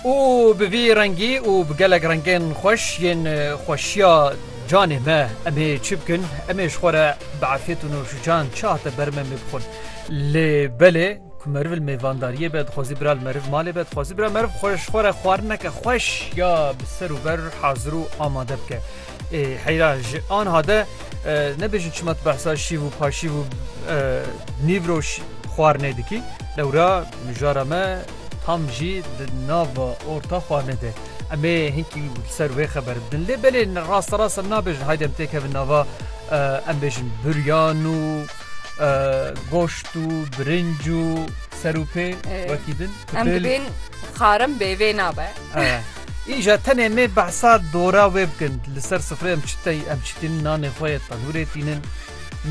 Û bi vî rengî û bi gelek rengên xweş yên xweşiya canê me em ê çi bikin? Em ê ji xwe re bi efyet û nûşican çi hate ber me em ê bixwin? Lê belê ku meriv li mêvandariyê be dixwazî bira li meriv malê be, dixwazî bira meriv xwe ji xwe re xwarin neke xweş ya bi ser û ber hazir û amade bike. Ê heyra ji anha de nebêjin çima tu behsa şîv û paşîv û nîvro xwarinê dikî lewra mijara me tam jî di nava orta xwarinê de em ê hinkî ser wê xeber bidin lê belê rasta rast em nabêjin haydi em têkevin nava em bêjin buryan û goşt û birinc û ser û pê wekî din em dibên xarim bê vê nabe Îja tenê nê behsa dora wê bikin, li ser sifrê em çi tey em çi tînin nanê xwe yê tenûrê tînin,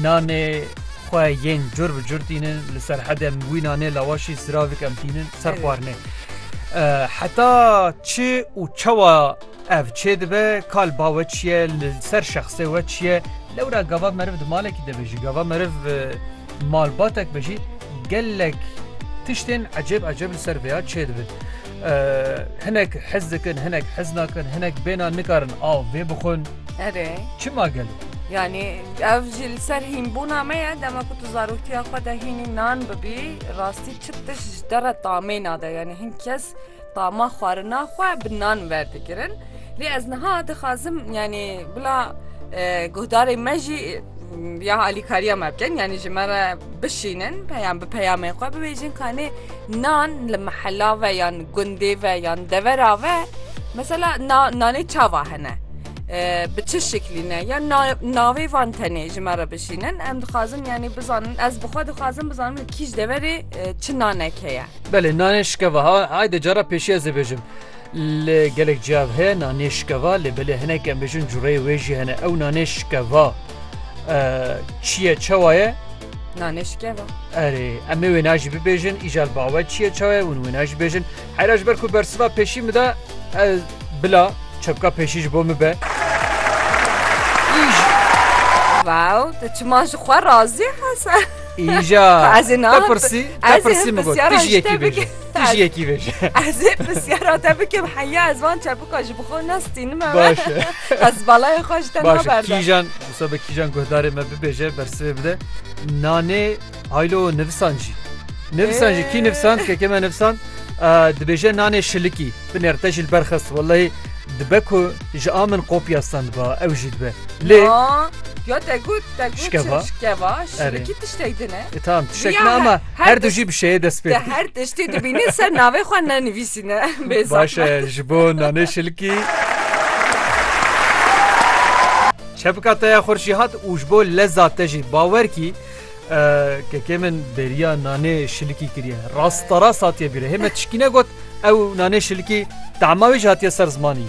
nanê xwe yên cur bi cur tînin, li serhedê em wî nanê lawaşî siravik em tînin ser Evet. xwarinê. Eh, Heta çi û çawa ev çê dibe kal ba we çi ye li ser şexsê we çi ye lewra gava meriv di malekî de bejî gava meriv eh, malbatek bejî gelek tiştên ecêb ecêb li ser vêya çê dibin. Hinek hez dikin, hinek hez nakin, hinek bêhna nikarin av vê bixwin. Erê. Çima gelo? Yani ev jî li ser hînbûna me ye dema ku tu zarotiya xwe de hînî nan bibî rastî çi tişt ji te re tamê nade yani hin kes tama xwarina xwe bi nan werdigirin. Lê ez niha dixwazim yanî bila guhdarê me jî ya alîkariya me bikin yanî ji me re bişînin yan bi peyamên xwe bibêjin kanê nan li mehela ve yan gundê ve yan devera ve mesela nanê çava hene bi çi şeklî ne ya navê van tenê ji me re bişînin em dixwazim yanî bizanin ez bixwe dixwazim bizanim li kîj deverê çi nanek heye Belê nanê şikevaha hayde cara pêşiye zêbêjim. Li gelek ciyav heye nanê şikeva lê belê hinek em bêjin cureyê wê jî hene. Ew nanê şikeva çi ye çewa ye? Nanê şikeva. Erê em ê wêna jî bibêjin îja li bawe çi ye çawe hûn wêna jî bêjin. Heyra ji ber ku bersiva pêşî min da ez bila çepka pêşî ji bo min be. Wow, tu çima ji xwe razî hese. Îja Ez ê te nahat- pirsî te ez ê pirsî min got pirsiyara tu jî ji te yekî bêje. bikim. Tu jî yekî vêje. Ez ê pirsyara te bikim heya ez van çebuka ji bixwe nestînime Baş e. ez balaya xwe ji te Baş e. naberdim. Kîjan wisa be kîjan guhdarê me bibêje bersivê bide. Nanê haylo nivisan jî. Nivisan jî kî nivisan keke me nivisan e, dibêje nanê şilikî. Binêr te jî li ber xist wellehî dibe ku ji a min kopya stendba ew jî dibe. Lê Ya te got te got Şikeva. şikeva şirikî tiştek din e. E, tamam tişek Ya, ne ama her- her her du tişt- jî bi şeye dest pê Te dike. her tiştê dibînî ser navê xwe ne nivîsîne. Bê Baş zahmet. e ji bo nanê şilkî. Çepika te ya xurşî hat û ji bo leza te jî bawer kî Kekê min beriya nanê şilikî kiriye. Rastarast hatiye bîre. Hê me tişkîne got ew nanê şilikî tema wê jî hatiye ser zimanî.